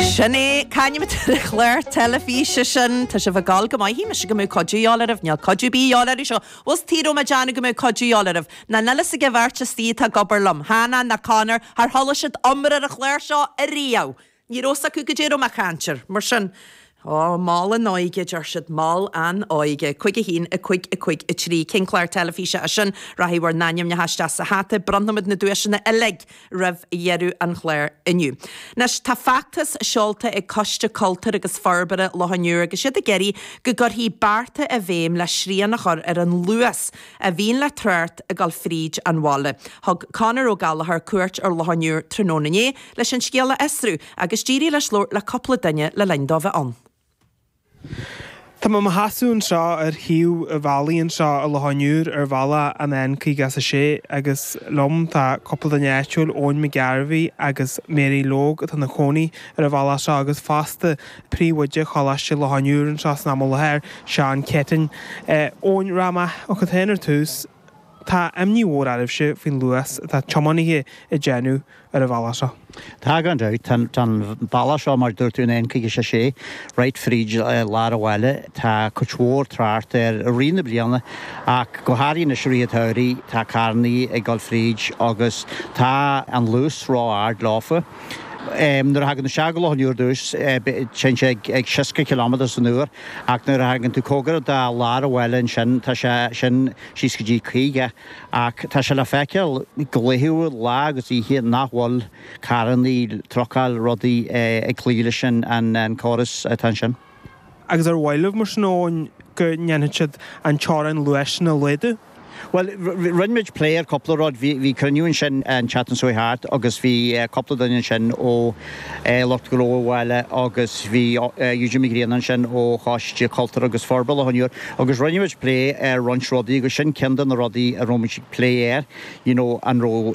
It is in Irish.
Sin é, c'ainm atá ar an chlár teilifíse sin. Tá sibh ag gol go maith. Shíl mise go mbeadh cuidiú dheáil oraibh. Níl cuidiú 'bith dheáil oraibh. Seo, bhfuil 's agaibh, bhí mé deánamh go mbeadh cuidiú dheáil oraibh. Ná níl fhios ag a' bheirt atá ag obair liom, Hannah ná Conor, char chuala siad iomrá ar an chlár seo ariamh. Ní raibh fhios acu goidé raibh mé a' caint air. Mar sin, Ó, mol an óige, a deir siad, mol an óige. Cuig a haon, a cuig, a cuig a trí. Cén chlár teilifíse é sin? Rachaidh bhur n-ainmneacha isteach sa hata. Bronnfaimid na duaiseanna uilig roimh dheireadh an chláir inniu. Anois tá feachtas seolta ag Coiste Cultúir agus Forbartha Loch an Iúir agus iad ag iarraidh go gcuirfí bearta i bhfeidhm le srian a chur ar an luas a bhíonn le trácht ag gabháil fríd an bhaile. Thug Conor Ó Gallachóir cuairt ar Loch an Iúir tráthnóna inné leis an scéal a fhiosrú agus d'éirigh leis labhairt le cúpla duine le linn dó bheith ann. Tá mé i mo sheasamh anseo ar thaobh an bhealaigh anseo i Loch an Iúir ar bhealach an N56 agus liom tá cúpla duine áitiúil, Eoin Mac Ghearbhuigh agus Mary Logue atá ina cónaí ar an bhealach seo agus fosta príomhoide Choláiste Loch an Iúir anseo san am i láthair, Seán Keating. Eoin, rachaidh mé chugat féin ar dtús. Tá imní mhór oraibhse faoin luas atá tiománaithe ag déanamh ar an bhealach seo. Tá gan dabht. Tá an bealach seo, mar a dúirt tú, an N56, right fríd lár an bhaile. Tá cuid mhór trácht air i rith na bliana ach go háirithe anois i rith an tsamhraidh. Tá carrannaí ag dul fríd agus tá an luas ró-ard leofa. Nuair a thagann tú isteach go Loch an Iúir dtús, téann sé ag seasca ciliméadar san uair, ach nuair a thagann tú cóngarach do lár an bhaile ansin, tá sé sin síos go dtí 50. Ach tá sé le feiceáil go laethúil, lá agus oíche, nach bhfuil carrannaí, trucáil, rudaí ag cloí leis an gcóras atá ansin. Agus ar mhaith libh, mar sin, go ndéanfadh siad an teorainn luais sin a laghdú? Bhuel, rinne muid plé ar chúpla rud. Bhí cruinniú ansin an tseachtain seo thart agus bhí cúpla duine ansin ó lucht gnó an bhaile agus bhí Eugene McGrean ansin ó Choiste Cultúir agus Forbartha Loch an Iúir agus rinne muid plé ar roinnt rudaí agus sin ceann de na rudaí a raibh muid ag plé air, you know, an raibh